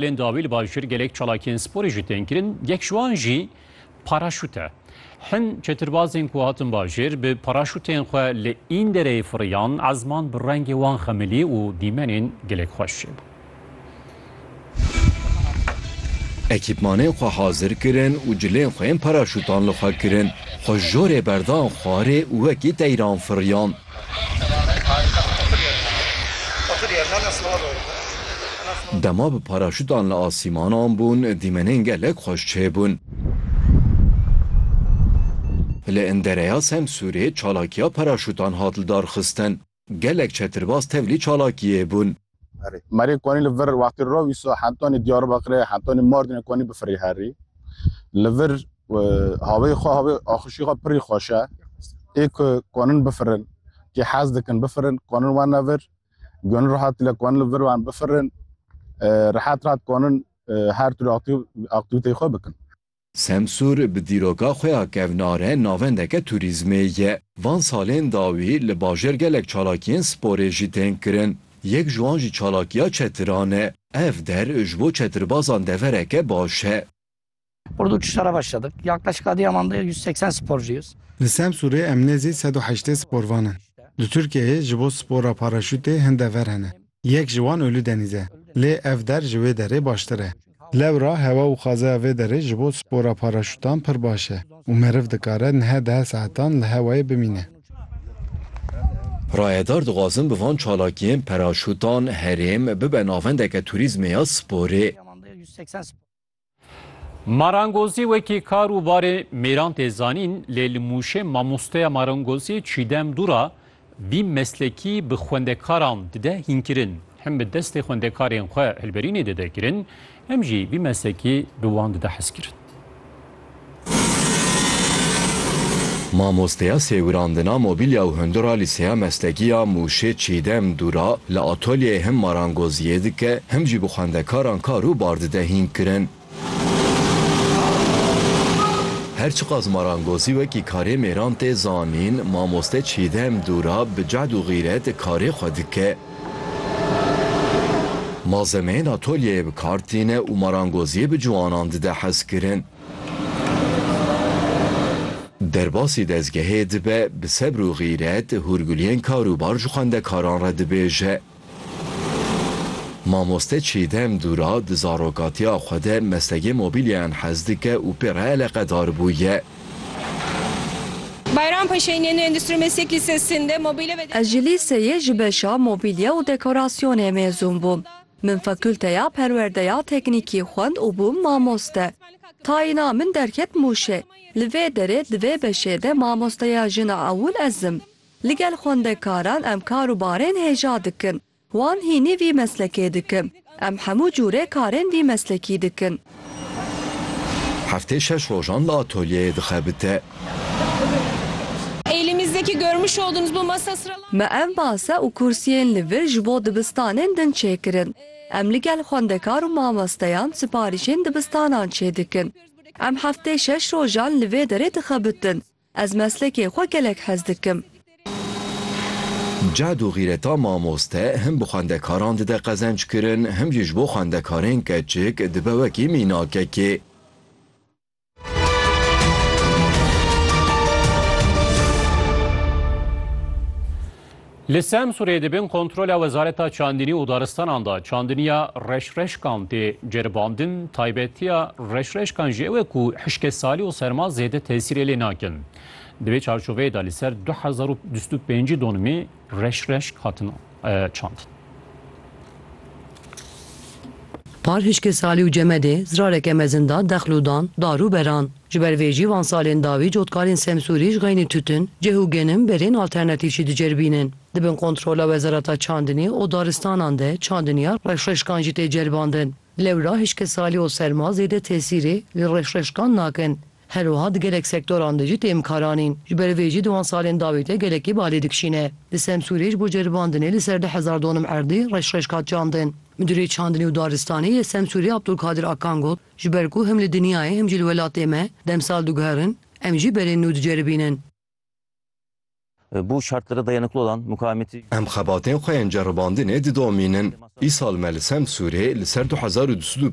Lê dawî li bajêr gelek çalakiyên sporê jî tên kirin, yek ji wan jî paraşût e. Hin çetirbazên ku hatin bajêr bi paraşûtên xwe li Îndereyê firiyan, ezman bi rengê wan xemilî û dîmenên gelek xweş çêbû. Ekîpmanên xwe hazir kirin û cilên xwe yên paraşûtan li xwe kirin. Xwe jorê berdan xwarê û wekî teyran firiyan. Dema bi paraşûtan li asîmanan bûn, dîmenên gelek xweş çêbûn. Li Indereya Semsûrê çalakiya paraşûtan hat lidarxistin. Gelek çetirbaz tevlî çalakiyê bûn. Merê konî li vir wextê rov îso hentonê Diyarbekirê, hentonê Mardinê konî bifirî herî. Li vir haveyê xwe havê axişî xwe pirî xweş e. Ê ku konin bifirin, kê hez dikin bifirin, konin wene vir. Gunî rehatî le konin li vir wan bifirin. Rehat rehat konin her tür aktîvîteyê xwe bikin. Semsûr bi dîroka xwe ya kevnare navendeke tûrîzmê ye. Van salên dawî li bajêr gelek çalakiyên sporê jî tên kirin. Yek ji wan jî çalakiya çetiran e. Ev der ji bo çetirbazan devereke baş e. Ordu uçuşlara başladık. Yaklaşık Adıyaman'da yüz seksen sporcuyuz. Li Semsûrê em nêzî sed û heştê sporvan in. Li Tirkiyeyê ji bo spora paraşûtê hin dever hene. Yek ji wan Ulu Denîz e. Lê ev der ji wê derê baştir e. Lewra hewa û xazeya vê derê ji bo spora paraşûtan pir baş e û meriv dikare niha deh saetan li hewayê bimîne. Rayedar dixwazin bi van çalakiyên paraşûtan herêm bibe navendeke turîzmê ya sporê. Marangozî wekî kar û barê mêran tê zanîn lê li Mûşê mamosteya marangozî Çîdem Dûra vî meslekî bi xwendekaran dide hînkirin. Hem bi destê xwendekarên xwe hilberînê dide kirin hem jî vî meslekî bi wan dide hezkirin. Mamosteya sêwirandina mobîlya û hindura Lîseya Meslekî ya Mûşê Çîdem Dûra li atolyeyê him marangoziyê dike him jî bi xwendekaran kar û bar dide hînkirin. Her çiqas marangozî wekî karê mêran tê zanîn, mamoste Çîdem Dûra bi cehd û xîret karê xwe dike. Malzemeyên atolyeyê bi kar tîne û marangoziyê bi ciwanan dide hezkirin. Derbasî dezgehê dibe, bi sebr û xîret hûrguliyên karûbar ji xwendekaran re dibêje. Mamoste Çîdem Dûra di zarokatiya xwe de meslegê mobîlyayan hez dike û pê re eleqedar bûye. Bayram Paşay'ın yeni Endüstri Meslek Lisesi'nde mobile ve Ez ji lîseyê ji beşa Mobîlye û Dekorasyonê mêzûn bûm. Min Fakulteya Perwerdeya Teknîkî xwend û bûm mamoste. Tayîna min derket Mûşê. Li vê derê di vê beşê de mamosteya jina ewil ez im. Ligel xwendekaran em kar û barên hêja dikin. Wan hînî vî meslekê dikin. Em hemû cûrê karên vî meslekî dikin. Heftê şeş rojan li atolyeyê dixebite. Me ev masa û kursiyên li vir ji bo dibistanên din çêkirin. Em li gel xwendekar û mamesteyan siparîşên dibistanan çêdikin. Em heftê şeş rojan li vê derê dixebitin. Ez meslekê xwe gelek hez dikim. Cehd û xîreta mamoste him bi xwendekaran dide qezenckirin, him jî ji bo xwendekarên keçik dibe wekî mînakekê. Li Semsûrê di bin kontrola Wezareta Çandinî û Daristanan de çandiniya reşreşkan tê ceribandin, taybetiya reşreşkan jî ew e ku hişkê salî û serma zêde tesîrê lê nakin. Di vê çarçoveyê de li ser du hezar û bîst û pêncî donimê reşreşk hatin çandin. Par hişkê Salî û Cemedê zirareke mezin da dexl û dan, dar û beran. Ji ber vê jî van salên dawî cotkarên Semsûrî ji xeynî tûtin, cih û genim berên alternatîf jî diceribînin. Di bin kontrola Wezareta Çandinî û Daristanan de çandiniya reşreşkan jî tê ceribandin. Lewra hişkê Salî û serma zêde tesîrê li reşreşkan nakin. Her wiha di gelek sektoran de jî têm kar anîn. Ji ber vê jî di wan salên dawî de gelekî balê dikişîne. Di Semsûrê ji bo ceribandinê li ser du hezar donum erdê reş reş hat çandin. Midûrê Çandinê û Daristanê yê Semsûrê Abdulkadir Akan got, Ji ber ku him li dinyayê him jî li welatê me demsal diguherin, em jî berên nû diceribînin. Em xebatên xwe yên ceribandinê didomînin. Îsal me li Semsûrê li ser du hezar û du sed û